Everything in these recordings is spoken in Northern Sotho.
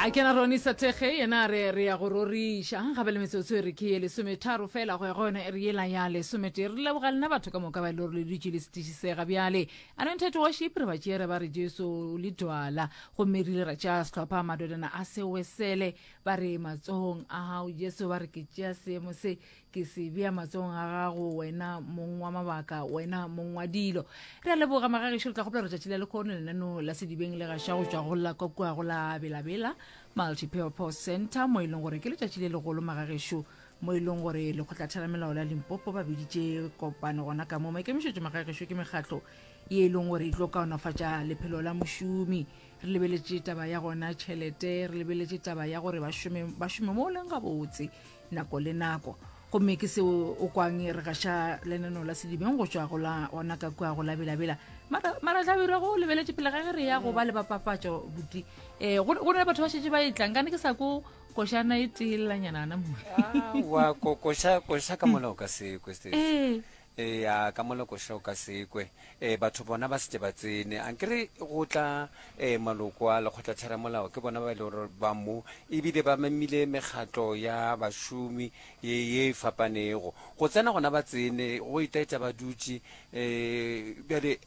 a kena rone sathege yena a re re ya go roriša gape le metsotso e re ke ye lesometharo fela go ya go yone e re yela ya lesometee re leboga lena batho ka moka ba e le gore le dutše le setišisega bjale anointed worship re ba tšere ba re jesu le dwala gomme rile ra tšea sehlopha madodana a sewesele ba re matsohong a gago jesu ba re ke tšea seemo se ke se bea matsogong a gago wena mong wa mabaka wena mong wa dilo re a leboga magagešo re tla gopela retšatši la lekgono lenaneo la sedibeng le gaša go tšwa go la kwa kua go la belabela multipurpose center mo e leng gore ke letšatši le legolo magagešo mo e leng gore lekgotlatheramelao la limpopo ba biditše kopano gona ka mo maikemišetšo magagešo ke mekgatlo ye e leng gore e tlo kaonafatša lephelo la mošomi re lebeletše taba ya gona tšhelete re lebeletše taba ya gore ba šome mo leng gabotse nako le nako gomme ke seo o kwang e re gaša lenano la sedibeng go tšwa go la ona ka kua go labelabela maratlabirwa go lebeletše pele ga ge re ya go ba le bapapatšo buti um go na le batho ba šetse ba e tlang kane ke sa ko košana e teelelanyana ana mowa kokoša ka mola o ka se kweste ee Eya, ka mo lekoša o ka se kwe. Ee, batho bona ba se ke ba tsene. A nkere go tla ee, maloko a lekgotlatheramolao ke bona ba e lego gore ba mo e bile ba memile mekgatlo ya bašomi ye ye e fapanego go tsena gona ba tsene go itaetša ba dutše um bjale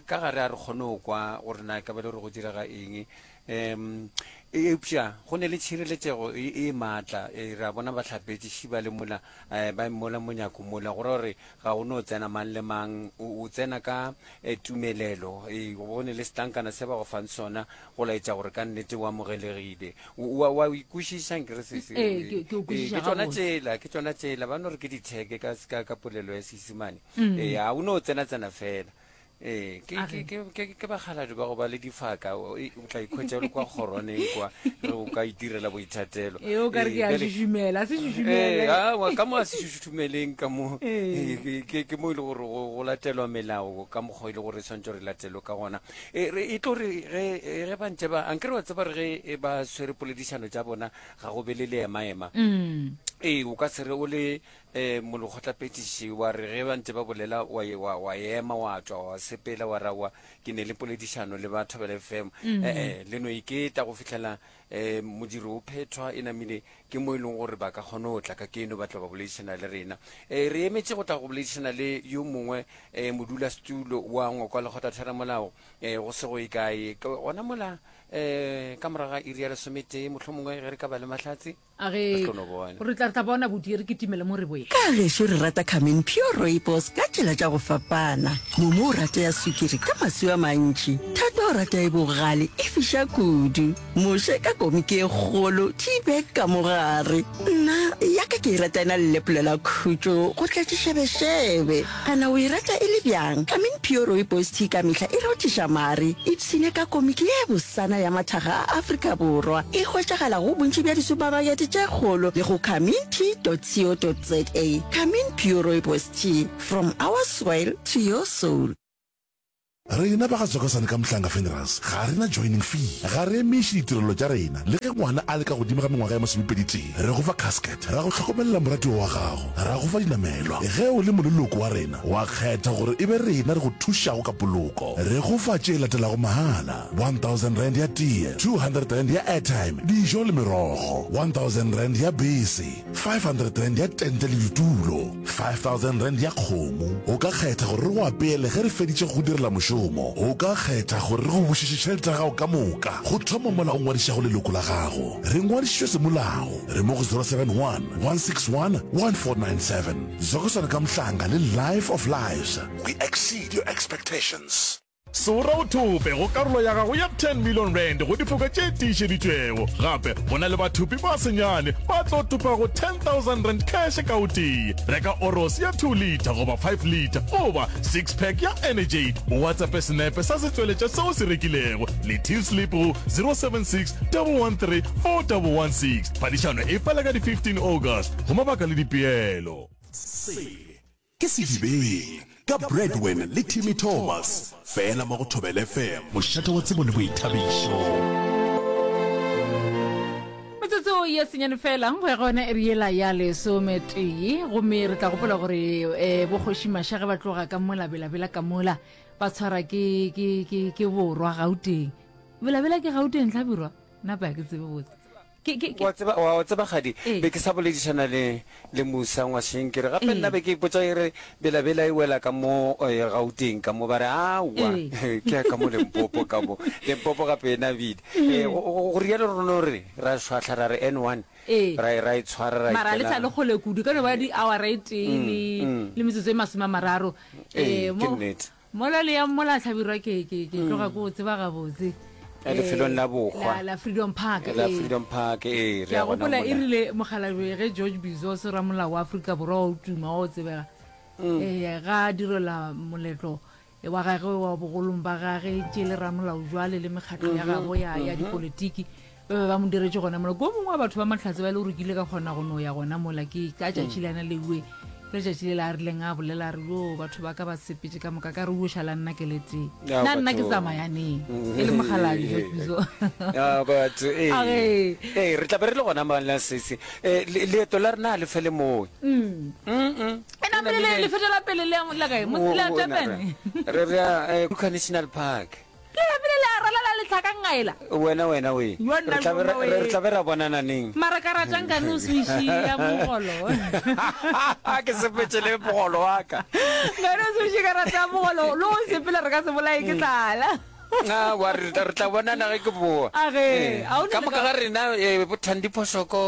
ka gare a re kgone go kwa gore na ka ba le gore go direga eng um eupša go ne le tšhireletšego e, e maatla e, ra bona bahlapetšiši ba le mola um ba mola monyako mola go ra gore ga o no tsena mang le mang o tsena ka e, tumelelo e, go ne le setlankana se ba go fang sona go laetša gore ka nnete o amogelegile wa o ikwešiša nkere ke tsona tsela ke tsona tsela ba no re ke ditheke ka polelo ya seisemane mm. ee ga o ne o tsena tsena fela ee ke- ke- ke- ke- ke bakgaladi ba go ba le difaka o e- o tla ikhwetša o le kwa kgoroneng kwa re o ka itirela boithatelo e o ka re ke a Ee, bjale- šušumela a se Ee, šušumele aowa, ka mo a se šušumeleng ka mo Ee. Ee, ke- ke mo e le gore go go latelwa melao ka mokgwa e le gore e tshwanetse re latelwe ka gona e re- e tlo re ge e- ge ba ntse ba a nke re wa tseba re ge e ba swere poledišano tša bona ga go be le le emaema Mm. ee o ka se re o le Ee, molekgotlaphethiši, wa re ge ba ntše ba bolela, wa, wa, wa ema, wa tšwa, wa sepela, wa ra, wa, ke ne le poledišano le ba Thobela FM. Ee, le no iketa go fihlela um modiro o phethwa, e namile ke mo e leng gore ba ka kgona go tla ka keno ba tlo ba boledišana le rena. Ee, re emetše go tla go boledišana le yo mongwe um modulasetulo wa ngwakwa lekgotatheramolao um go se go e kae, gona mola um ka morago ga iri ya lesometee, mohlomongwe ge re ka ba le mahlatse. A re, Re tlo no bona. Re tla, re tla bona, bodie, re kitimele mo re boe. Ka gešo re rata Carmen Pure Rooibos ka tšela tša go fapana. Momo o rata ya swikiri ka maswi a mantši. Thato o rata e bogale, e fiša kudu. Moše ka komiki e kgolo, tea bag ka mo gare. Nna, ya ka ke e rata e na le lepolela khutšo go tlatšiša bešebe. Kana o e rata e le byang? I mean pure rooibos tea ka mehla e rothiša mare. Ipshine ka komiki ye bosana ya mathaga a Afrika Borwa. E hwetšagala go bontši bja disupamakete tše kgolo le go kamintea.co.za. Kamin Pure Rooibos Tea, from our soil to your soul. Rena ba ga Zokosane ka Mhlanga Funerals ga re na joining fee. Ga re emiše ditirelo tša rena. Le ge ngwana a le ka godimo ga mengwaga ya masomepedi-tee, re go fa casket, ra go hlokomelela moratiwa wa gago, ra go fa dinamelwa. Ge o le moleloko wa rena, wa kgetha gore e be rena re go thušago ka poloko. Re go fa tše latelago mahala, one thousand rand ya tee, two hundred rand ya airtime, dijo le merogo, one thousand rand ya bese, five hundred rand ya tente le ditulo. 5000 rand ya kgomo. O ka kgetha gore re go apeele ge re feditše go go direla mošomo. O ka kgetha gore re go bušetše tšhelete ya gago ka moka. Go thoma mola o ngwadišago leloko la gago, re ngwadišitšwe semolao. Re mo go 071 161 1497. Zokosana Kamhlanga le Life of Lives. We exceed your expectations. Sora o thope go karolo ya gago ya 10 million rand go difoka tše tiišeditšwego. Gape go na le bathopi ba senyane ba tlo topa go 10,000 rand cash ka o tee. Reka Oros ya 2 litre goba 5 litre goba six pack ya Energade. O WhatsAppe senepe sa setšweletša se o se rekilego le till slip go 076 113 4116. Phadišano e fela ka di 15 August. Go mabaka le dipeelo. Se. Ke Sedibeng ka Bradwin le Timmy Thomas fela mo go Thobela FM. Mošate wa tsebo le boithabišo. Metsotso ye senyane fela go ya go yona e re yela ya lesome tee gomme re tla gopola gore um eh, bokgoši maša ge ba tloga ka mola belabela ka mola ba tshwara ke, ke, ke, ke borwa gauteng belabela ke gauteng tlhabirwa napa ya ke tsebe botse Ke, ke, ke. Wa tseba, wa, wa tseba kgadi, Ee. be ke sa boledišana le, le Musa ngwasheng, ke re, gape Ee. nna be ke ipotša e re, bela-bela e wela ka mo, eh, Gauteng ka mo, ba re, Aowa, Ee. ke ya ka mo Limpopo ka mo, Limpopo gape e nabile. Ee. Eh, go, go, go rialo re no re, ra šwahla ra re N one, Ee. ra, ra e tshwara ra Mara ha le sa le ikela. kgole kudu, e ka no ba di-hour e tee le, Mm, mm. le metsotso e masome a mararo, Ee, eh, ke mo, nnete. Mola le yang mola hlabirwa ke ke ke tloga ko o tseba gabotse. Eh, lefelong la bohwa la freedom park la eh. freedom park ee ke a gopola e rile mogalabe ge george bizos ramolao wa aforika borwa wa o tuma wa o tsebega mm. ee ga direla moletlo e wa gagwe wa bogolong ba gage tše le ramolao jwale le mekgatlo ya mm-hmm. gabo ya mm-hmm. dipolitiki ba be ba mo diretše gona mola ko mongwe wa batho ba mahlatse ba e le gore kile ka kgona go no ya gona mola ke ka tšatši le ana leue ke letšatši le le a rileng a bolela a re yo batho ba ka ba sepetse ka moka ka re uoša la nna ke letee Ya, na nna ke batho. tsamayaneng e le mogaladi jo piso Ya, batho ee. A re- Ee, re tlabe re le gona mala sese Eh, le- leeto la rena ga le fele moe e namele lefeto la pele le ya mo- la kae Mo- la Durban? re re ya eh, Kruger national park Ke lapile le a ralala letlhaka ngaela. Wena wena we. Yo nna Re tla be mongwe ra- we. re tla be ra bonana neng? Mara ka ratang ka no se išia mogolo. ke sepetše le mogolo wa ka Ka no se išia ka ratang mogolo. Lo o sepela re ka se bolae ke tlala. Ah, wa re re tla- re tla bonana ge ke boa Age, Eh, a o ne ka le moka ka- ga rena eh, bothandiphošoko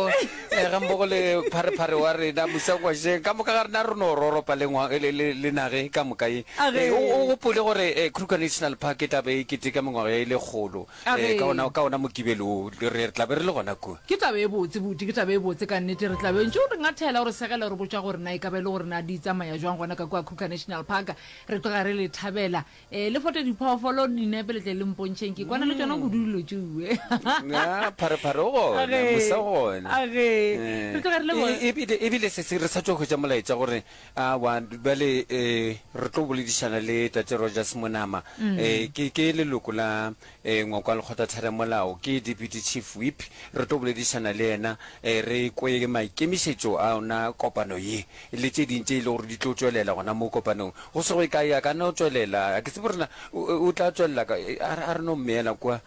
Eh, gammogo le pharephare wa rena mosakwasheng ka moka ga rena re no roropa le nage ka moka ye eh, o gopole gore eh, kruger national park e tlabe e keteka mengwaga ya e le kgolo ka ona mokibele o re tlabe re le gona kua ke tabe e botse bute ke tabe e botse ka nnete re tlabe ntse o re ngathela o re segela o re botsa gore na e ka ba e le gore na di tsamaya jwang gona ka kua kruger national park re tloga re le thabela Ee, le fote diphoofolo dinepe le tle le mpontšheng ke kwane le tšona mm. kudu dilo tšue ah, pharephare o gona mosa gona ebile sese re sa tso hwetsa molaetsa gore a wa bale um re tlo boledišana le tate rogers monama um ke leloko la E ngwe kwa Lekgotlatheramolao ke Deputy Chief Whip, re tlo boledišana le yena re kwe maikemišetšo a ona kopano ye le tše ding tše e le gore di tlo tšwelela gona mo kopanong. Go se go ye kae a ka no tšwelela, ga ke tsebe gore na o tla tšwelela ka, a re no mmeela kwa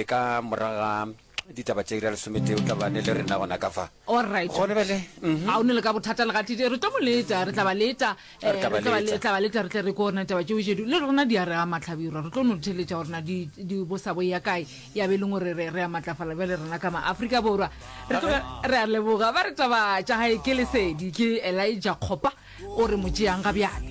ka morago ga ditaba tše ira lesometee o tla bane le rena gona ka fa Alright. gone bele mhm. a o ne le ka bothata le gatite re tlo mo leta re tla ba leta eh, Re tla ba re tla ba leta. le- tla ba leta re tle re ko rena taba tšeo jedu le rena di a re a matlhabirwa re tlo no theletša gore na di di bosa bo ya kae ya be e leng gore re re a matlafala bjale rena ka maaforika borwa re tloga re a leboga ba re taba tša gae ke lesedi ke elija kgopa o re mo tšeang ga bjale